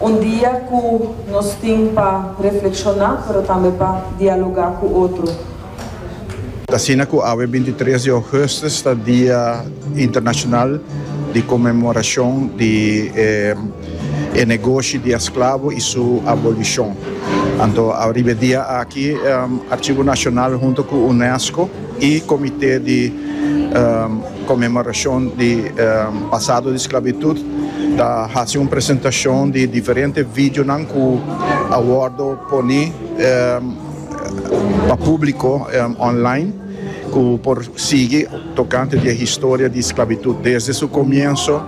Un dia ku nos tin pa reflekshoná pero tambe pa dialogá ku otro. Ta asina ku awe bintitres di ougùstus ta dia internashonal di konmemorashon di e negoshi di esklabo i su abolishon. Anto riba e dia aki Arshivo Nashonal huntu ku UNESCO i Komité di. Conmemorashon di pasado di sclavitud ta haci un presentacion di diferente videonan cu a wordo poni pa publico online cu por sigui tocante di e historia di sclavitud desde su comienso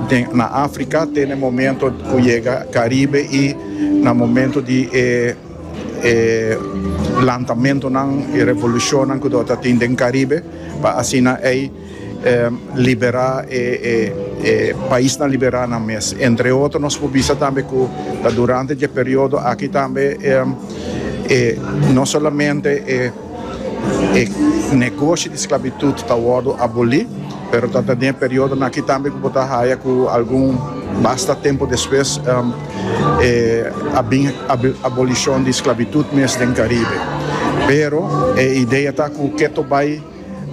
den na Africa te na e momento cu yega Caribe y na momento di e e lantamentonan, e revolucionnan cu dor ta tin den Caribe, pa asina ey libera e paisnan libera nan mes. Entre otro nos por bisa tambe cu ta durante dje periodo aki tambe e no solamente e. E negoshi di sklabitut ta wòrdu abolí, pero ta ta den e periodonan akí tambe ku bo ta haya ku algun basta tempu despues e a bin abolishon di sklabitut mes den Karibe. Pero e idea ta ku keto bai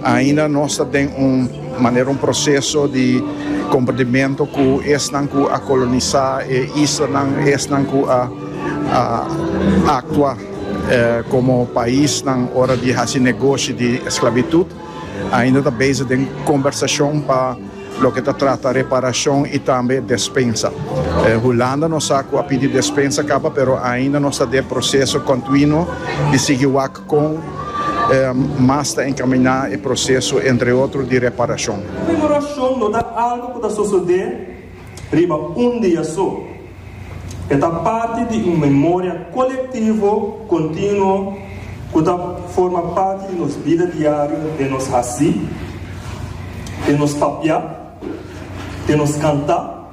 ainda nos ta den un manera un proseso di komprendimentu ku esnan ku a kolonisá e islanan, esnan ku a aktua. Komo paisnan ora di hasi negoshi di esklabitut ainda ta bezig den kombersashon pa loke ta trata reparashon i tambe despensa. Hulanda nos sa ku a pidi despensa kaba pero ainda nos ta den proseso kontinuo di sigui wak kon mas ta enkaminá e proseso entre otro di reparashon. Komemorashon no ta algu ku ta sosodé riba un dia so. E ta parti di un memoria kolektivo kontinuo ku ta forma parti di nos bida diario den nos hasi, den nos papiá, den nos kantá,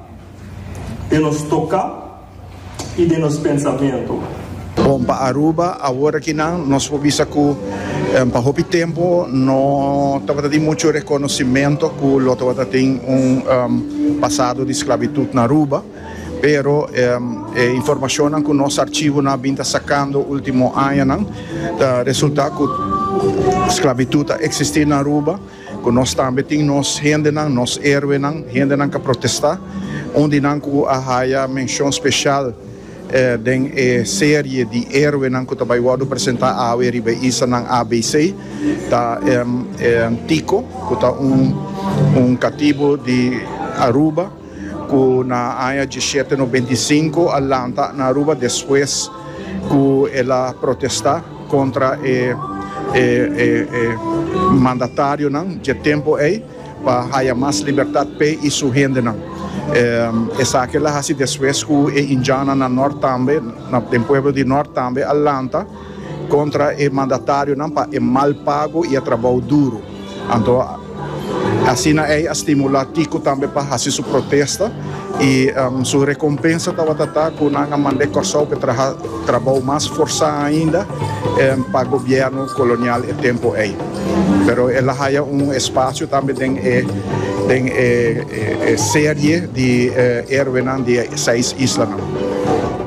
den nos toká i den nos pensamentu. Bon pa Aruba, awor aki nan nos por bisa cu pa hopi tempo no tabata tin mucho reconocimento cu lo tabata tin un pasado di sclavitud na Aruba, pero e informacionnan cu nos archivonan a bin ta sacando ultimo añanan ta resulta cu sclavitud a existi na Aruba, cu nos tambe tin nos hendenan, nos heroenan, hendenan cu a protesta, un di nan cu a haya mencion special. Den e serie di heroenan cu ta bay wordo presenta awe riba e islanan ABC ta Tico cu ta un catibo di Aruba cu na aña dieschete nobenta i sinku a lanta na Aruba despues cu el a protesta contra e mandatarionan dje tempo ey. pa haya mas libertad p'e y su hendenan. Esaki lo a haci despues cu e Indiana na Nort tambe, den pueblo di Nort tambe, a lanta contra e mandatarionan pa e mal pago y e trabao duro. Anto asina ey a stimula Tiko tambe pa haci su protesta y su recompensa tawata ta cu nan a mand'e Corsou p'e traha. Trabao mas forsá ainda pa gobièrnu kolonial e tempu ei. Pero el a haya un espasio tambe den e den e serie di Héroenan di e seis islanan.